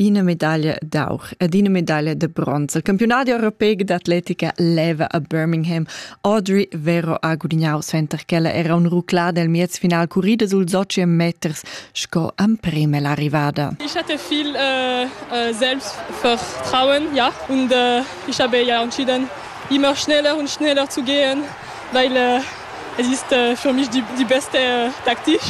ina medaglia d'aur ed ina medaglia da bronz. Il campionat europeic d'atletica leva a Birmingham Audrey Vero a Gudignau, suenter ch'ella era un ruclada el miez final currida sul soci meters sco emprem l'arrivada. Ich hatte viel äh, äh, Selbstvertrauen, ja, und äh, ich habe ja entschieden, immer schneller und schneller zu gehen, weil äh, Esiste für mich die, die beste Taktik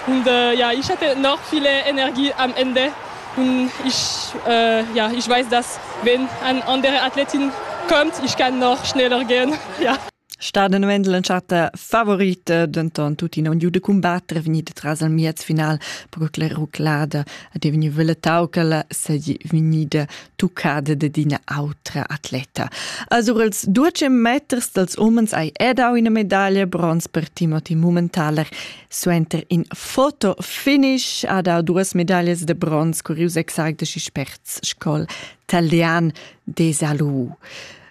und äh, ja, ich hatte noch viele Energie am Ende und ich, äh, ja, ich weiß, dass wenn eine andere Athletin kommt, ich kann noch schneller gehen. ja. Staden Wendel en chatta favorita, denton tuttina un giu da combattere vegnida tras al miez final, perché la ruclada è vegnida veletau che la seigi vegnida tuccada dad ina autra atleta. A sur els duecem meters dals umens hai edau ina medaglia bronz per Timothy Mummentaler. Suenter in fotofinish ha dau duas medaglias de bronz curius exact de sperts scol talian de Salou.